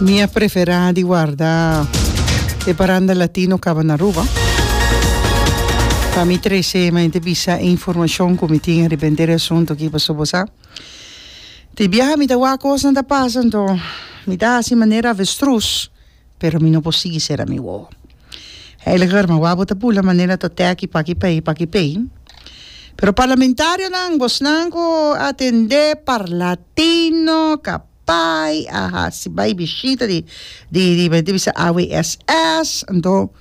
Mi a preferá di warda e paranda latino kaba na Aruba. Pa mi trece mente bisa e informashon ku mi tin riba henter e asuntu aki pasobra bo sa tin biaha mi ta wak kosnan ta pasa anto mi ta hasi manera avestruz. pero mi no por sigui sera mi wowo. Heiliger, ma wou bo ta bula manera ta tèki paki pei, paki pei. Pero parlamentarionan, bosnan ku a atendé Parlatino, Kapai, a hasi bai bishita di di di men ta bisa AWSS, anto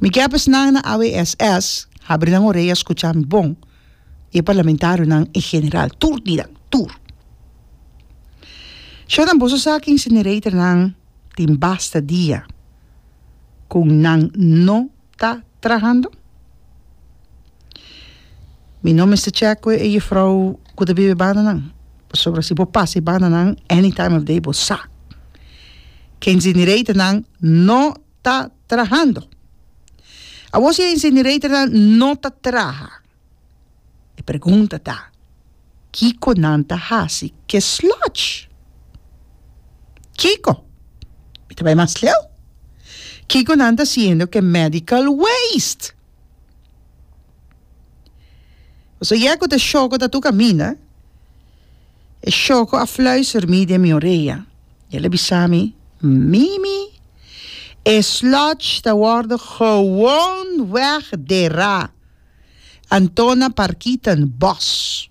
mi ke esnan na AWSS habri nan oreya skucha mi bon, i e parlamentarionan en general, tur di nan, tur. Shorinan boso sa ku incineratornan. Tin basta dia ku nan no ta trahando? Mi no mester chèk ku e juffrouw ku ta biba e bandanan, pasobra si bo pasa e bandanan any time of day bo sa ku e insineratornan no ta trahando. Awor si e insineratornan no ta traha. E pregunta ta, Kiko nan ta hasi ke slòtj? Kiko? Mi ta bai mas leu. Kiko nan ta siendo ke medical waste? Bo sa yè ku ta shoko ta tur kaminda? E shoko a fluister mi den mi orea i el a bisa mi, Mimi, e slòtj ta wòrdu gewoon wegderá. Antona Parkiten Bos.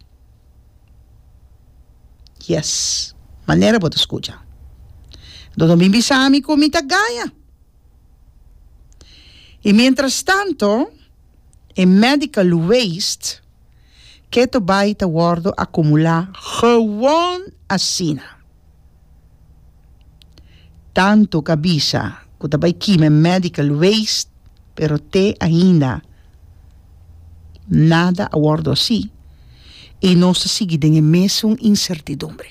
Yes, manera bo ta skucha. Do no bin bisa mi ku mi ta gaña. I mientrastanto e medical waste keto bai ta wòrdu akumulá, gewon asina. Tanto ka bisa ku ta bai kime medical waste pero te ainda nada a wòrdu así i nos ta sigui den e mesun insertidumbre.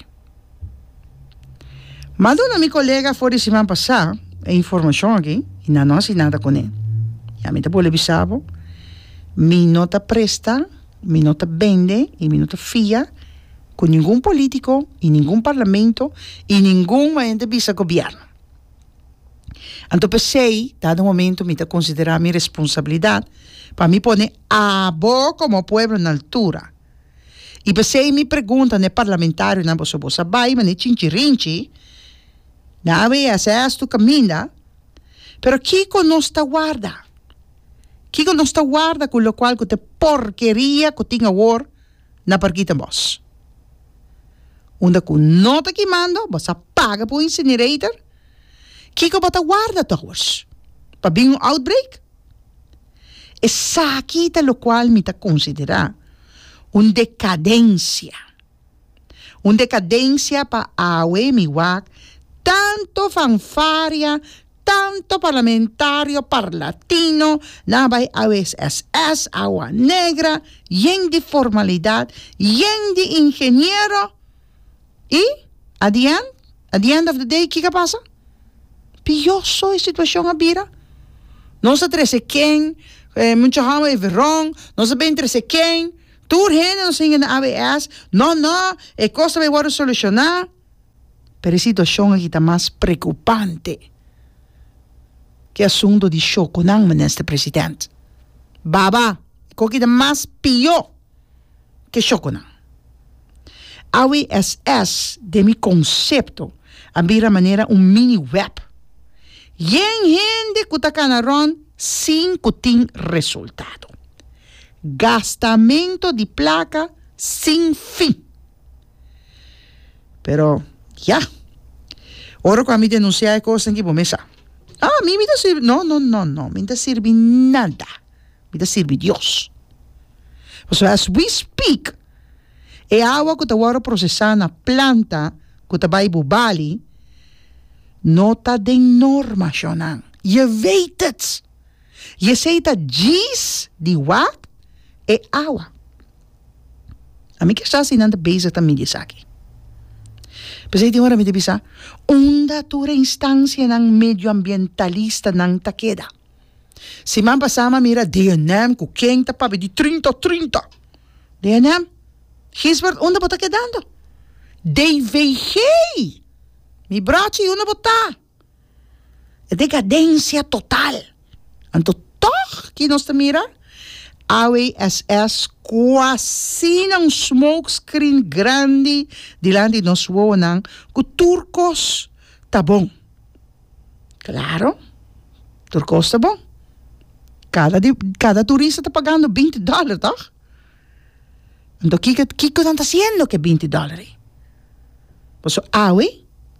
M'a duna mi kolega for di siman pasá e informashon aki i nan no hasi nada kuné. Ya mi ta bole bisa bo, mi no ta presta, mi no ta bende i mi no ta fia cu ningun politico y ningun parlamento y ningun maente bisa gobierno. Anto pesey dado momento mi ta considera mi responsabilidad pa mi pone abo como pueblo na altura y pesey mi pregunta na e parlamentarionan boso bo sa bay mane chinchirinchi na ABS esto caminda pero kico nos ta warda, kico nos ta warda cu locual cu ta e porkeria cu tin awor. na Parkita Bos. Unda cu no ta kimando, bo sa paga pa un incinerator? Kico bo ta warda towers? Pa bin un outbreak? Esaki ta locual mi ta considera un decadencia. Un decadencia pa awe mi wak tanto fanfaria, Tanto parlamentario parlatino na bai awes SS, awa negra, yen di formalidad, yen di ingeniero y at the end, at the end of the day kico a pasa? Pioso e situacion a bira. Nos a trece ken, mucho houden even wrong, nos a been trece ken, tur hende nos a hinga na AWS, no no, e cos ta bay worde soluciona. Pero e situashon aki ta mas preokupante ku e asuntu di shokunan, Minister President. Baba, e koki ta mas pió ke shokunan. Awe SS, den mi konsepto, a bira manera un mini wèp. Yen hende ku ta kana rònt sin ku tin resultado. Gastamentu di plaka sin fin. Pero, ya. Ora cu ami denuncia e cosnan aki, bo mes sa. Ah, mi mi ta sirbi. No, no, no, no. Mi no ta sirbi nada. Mi ta sirbi Dios. Pasobra as we speak, e awa cu ta wor procesa na planta cu ta bai bo bali, no ta den normacionnan. Je weet het. Jesei ta djis di wak e awa. Ami kier sa si nan ta bezig ta midi esaki. P'esei tin ora mi ta bisa, unda tur e instancianan medioambientalistanan ta keda? Siman pasá mi a mira DNM ku ken ta papia di trinta o trinta. DNM, Gisbert unda bo ta kedando? DVG, mi brochi unda bo ta? E decadencia total. Anto toch ki nos ta mira? Awe SS cuasina un smoke screen grandi dilanti di nos wowonan cu tur cos ta bon. Claro, tur cos ta bon. Cada turista ta pagando binti dollar, toch? Anto kiko kiko nan ta hasiendo ku e binti dòler ei? Por eso awe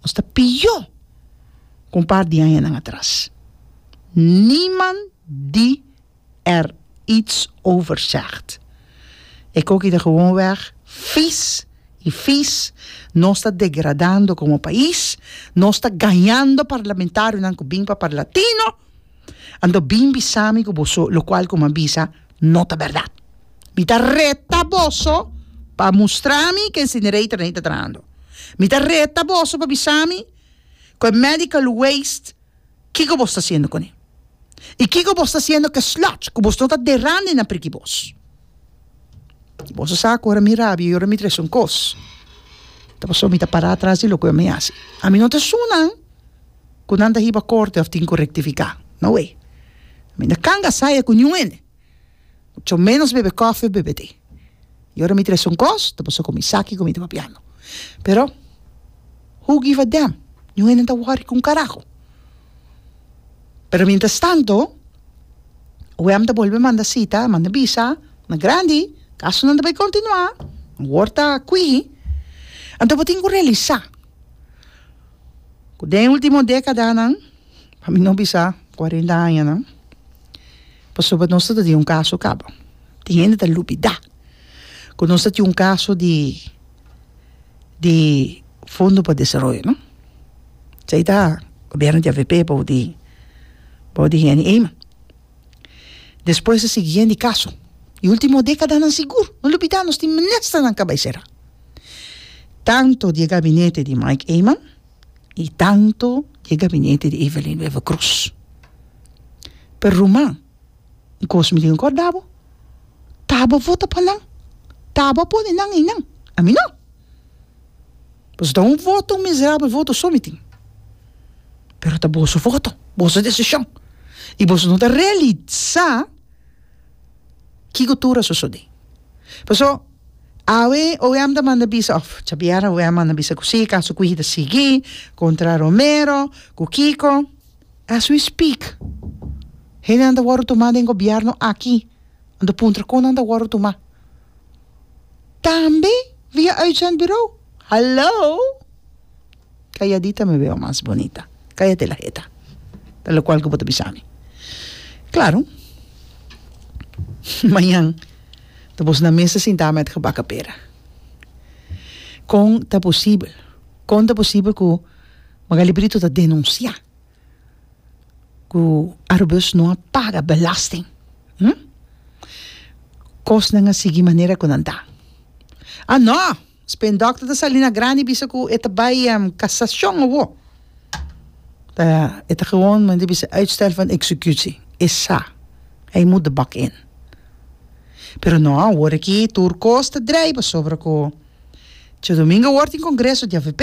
nos ta piyó ku un par di añanan atras. Niemand die er iets over zegt. E koki ta gewoonweg vies i vies. Nos ta degradando komo pais. Nos ta gañando parlamentarionan ku bin papà latino. Anto bin bisa mi ku boso lokual ku mi a bisa no ta bèrdat. Mi ta reta boso pa mustra mi ku e incinerator ei ta trahando. Mi ta reta boso pa bisa mi ku e medical waste kiko boso ta hasiendo kuné. I kiko boso ta hasiendo ku e sludge ku boso no ta dera den na priki bos. I boso sa ku ora mi rabia i ora mi trese un kos ta pasó mi ta para atras di loke mi hasi. Ami no ta esun nan. cu nan ta hiba corte of tin cu rectifica. No way. Mi na canga saya cu niun hende. Mucho menos bebe coffee of bebe thee. Y ora mi tres un cos, ta paso cu mi saki cu mi ta papiando. Pero, who give a damn? Niun hende no ta worry cu un carajo. Pero mientras tanto, OM ta bolbe manda cita, a manda bisa na grandi, caso nan ta bay continua, awor ta quihí, anto bo tin cu realisa. ku den e ultimo dekadanan, pa mi no bisa kuarenta añanan, pasobra nos ta tin un kaso kaba, tin hende ta lubidá ku nos ta tin un kaso di di Fondo pa Desaroyo, no? Esei ta gobièrnu di avp bou di bou di Henny Eman. Despues a sigui hende kaso. E ultimo dekadanan sigur, no lubidá nos tin ministernan kaba e será. Tanto di e gabinete di Mike Eman y tanto di e gabinete di Evelyn Wever Croes. Pero Ruma, un cos mi di recorda bo, tabo vota pa nan, tabo pone nan ei nan, a mi no. Boso ta un voto, un miserabel voto so mi tin. Pero ta boso voto, boso decision. Y boso no ta realisa kico tur a sosode. Pasobra Awe OM ta manda bisa òf djabiera OM manda bisa ku si kaso Quiji ta sigui kontra Romero ku Kiko as we speak hendenan ta wòrdu tumá den gobièrnu aki nan ta puntra kon nan ta wòrdu tumá tambe via uitzendburo hallo. Calladita mi weo mas bonita, cállate la heta, ta locual cu bo ta bisa mi. Claro, mañan ta bos na mesa sintá met gebaken pera. Con ta posibel, con ta posibel cu Magalie Brito ta denunciá cu Arubus no a paga belasting? Hm? Cosnan a sigui manera cu nan ta. Ah, no! Spain dòkter ta sali na grandi bisa ku e ta bai kasashon awor. Ta e ta gewoon men ta bisa uitstel van executie e sa hij moet de bak in. Pero no awor aki tur kos ta drei pasobra ku Tio Domingo awor tin kongreso di avp.